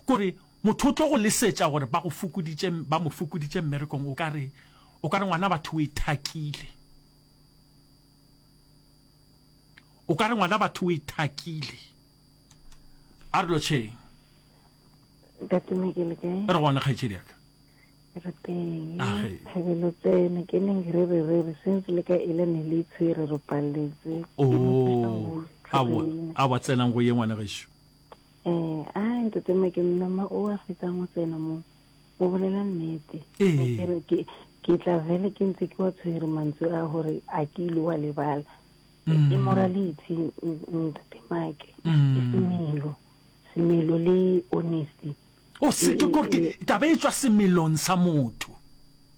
Kore motho o tlo go lesetša gore ba go fokoditše, ba mo fokoditše mmerekong, o ka re, o ka re ngwana batho o ithakile. O ka re ngwana batho o ithakile. A re lo tšheng. Ntate Mike le kae? Re gona kgaetšedi ya ka. re teng thabelo tsene ke neng re re re re since le ka ile ne le itshwere re paletse oh, a wa tsenang go ye ngwana gešo um a ntate make mama o a fetsang go tsena mo o bolela nnete ke tla vele ke ntse ke wa tshwere mantswe a gore a ke ile wa lebala mm. immorality ntate make mm. semelo semelo le honesty O se ke gore ke taba e tswa semelong sa motho.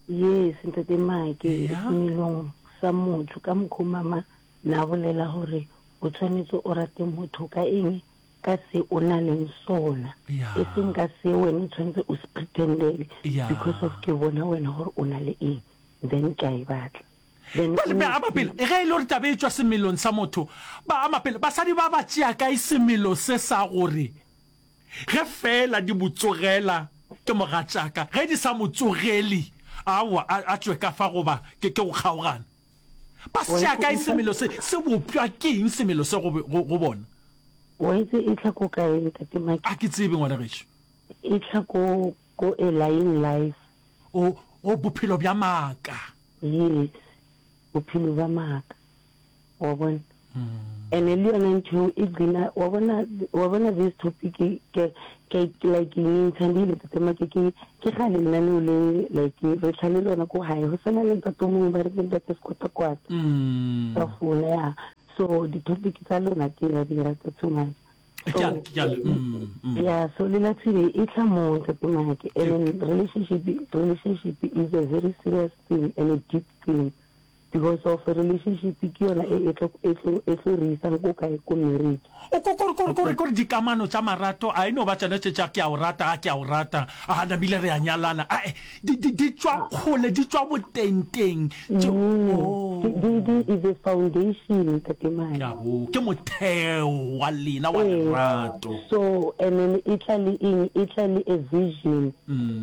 Yes, Ntate Make, Eya. semelong sa motho ka mokho mama na bolela gore o tshwanetse o rate motho ka eng ka se o na leng sona Ya. e seng ka se wena o tshwanetse o se pretendele Ya. because of ke bona wena gore o na le eng then ke a e batla then Bale o- ba ama pele e ge e le gore taba e tswa semelong sa motho ba ama pele basadi ba ba tšea kae semelo se sa gore Ge feela di mo tsogela, ke mogatšaka. Ge di sa mo tsogeli, aowa, a, a tšwe ka fa goba ke, ke go kgaogana. Ba se tšea kae semelo se? Se bopša ke eng semelo se go, go, go bona? O e tse ehlwa ko kae, Ntate Maki? A ke tsebe, ngwana gešo. Ehlwa ko, ko A Lying Life. O, o, Bophelo bja Maaka. Yes, Bophelo bja Maaka. wa bona ene le yona ntho e gcina wa bona wa bona this topic ke ke like ntsha di le tsema ke ke ke ga le nna no le like re tlhale lona ko hae ho sena le ntate mongwe ba re ke ntate sekota kwata mm. ka fona ya so di topic tsa lona ke ya di rata too much mm, mm. ya so le la tsile e tla mo tsa tsamaya ke and relationship relationship is a very serious thing and a deep thing Because of relationship ke yona e etlo etlo etlo re isang ko kae ko marriage. O ko kore kore kore kore dikamano tša marato a e no ba tšona tše tša ke a o rata a ke a o rata a nabile re a nyalana a e di di di tšwa kgole di tšwa boteng teng tše Di di di oh. is a foundation ntate mane. Ka bo ke motheo wa lena wa lerato. So and then e tla le eng e tla le a vision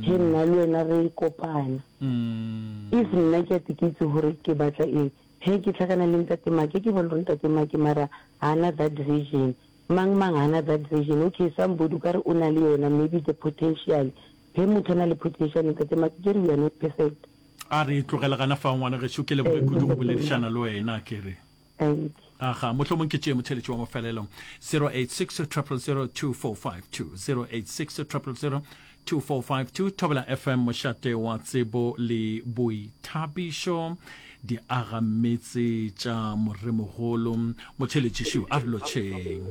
he nna le wena re kopana. If nna ke a te ke itse gore ke batla eng, he ke hlakana le Ntate Make, ke bolel'ore Ntate Make mara ha na that vision. Mang mang ha na that vision. Okay, somebody o ka re o na le yona, maybe the potential. He motho a na le potential, Ntate Make, ke re we are not perfect. A re e tlogele gana fao, ngwana geso, ke leboge kudu go boledišana le wena, ke re. Thank. Aga, mohlomong ke tšee motheletši wa mofelelo. 0860002452, 0860002452, Thobela FM, mošate wa tsebo le boithabišo, di aga metse tša moremogolo. Motheletši šiu, a re lotšheng.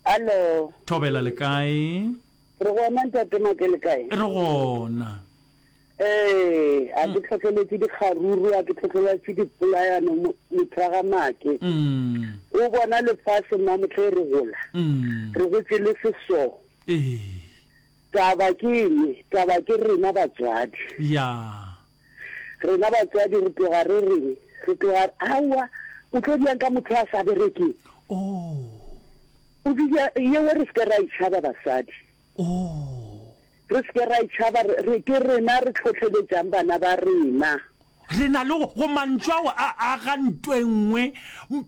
Alo. Thobela, le kae? Re gona ntate Make, le kae? Re gona. Ee, a ke tlhotlheletše dikgaruru, a ke tlhotlheletše dipolayano mo- motho wa ga make. Mm. O bona lefase mma motlha e re gola, Mm. re gotše le seso. Ee. Taba ke eng? Taba ke rena batswadi. Ya. Rena batswadi re tloga re reng? Re tloga aowa o tlo diang ka motho a sa berekeng. Oh. O bile yeo re se ke ra itšhaba basadi. Oo. Re se ke ra e tšhaba, re, re, ke rena re tlhohleletšang bana ba rena. Re na le go, go mantšu ao a aga nto e nngwe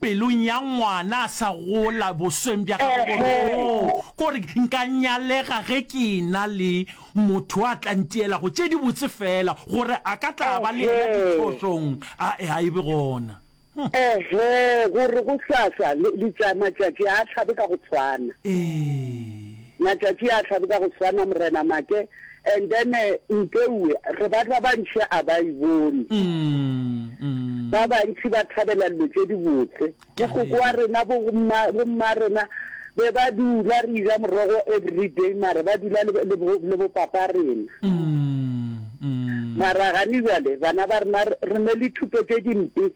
pelong ya ngwana a sa gola, bosweng bja gagwe, gore, Ehe. Oo, kore nka nyalega ge ke ena le motho a tla ntielago tše dibotse feela, gore a ka tla a ba le yena Ehe. diphošong. A, a e be gona. Ehe, gore go hlahla le, le tša, matšatši a hlabe ka go tshwana. Ee. Matšatši a hlabe ka go tshwana, Morena Make. And then eh, Mpeue, re ba ba bantši a ba e bone. Mm, mm. Ba bantši ba thabela dilo tše dibotse. Ke a Mokoko wa rena, bo mma, bo mma rena, Be ba dula re ja morogo everyday mara ba dula le, le, bo, le bopapa rena. Mara gane jale bana ba rena re re ne le thuto tše dimpe.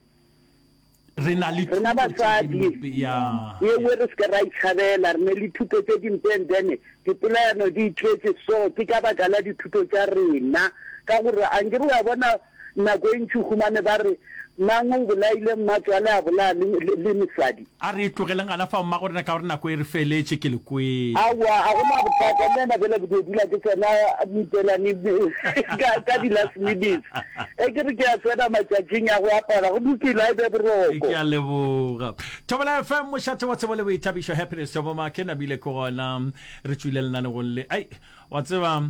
re na le Rena thuto tše basadi dimpe ya ye nngwe re se ke ra itšhabela re ne le thuto tše dimpe and then dipolayano di itletše so ke ka baka la dithuto tša rena ka gore a nkere wa bona Nako e ntši o humane ba re, Mang o bolaile mmatswale a bolaya le, le, le mosadi? A re tlogeleng gana fao, mmagorena, ka gore nako e re feletše. Ke le kwele. Aowa, ga go na bothata. Nna bjale ke tlo dula ke tsena mipelane ka, ka di-last minutes. Ge ke re ke a tsena matšatšing a go apara, go lokile, a e be boroko. Ke a leboga. Thobela FM, mošate wa tsebo le boithabišo. Happiness Thoboma, ke namile ke gona re tšwile lenanegong le. Ai, wa tseba,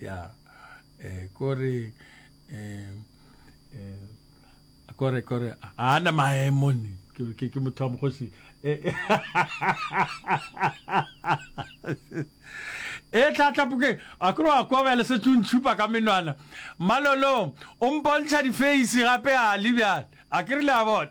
ya eh, kore eh, eh, kore kore a na maemo ni ke ke motho wa mogosi eh, eh. e tlatlapoke a kore wa kwa bjale se tšuntšhupa ka menwana malolo o mpontšha difeisi gape a le bjale a ke re le a bona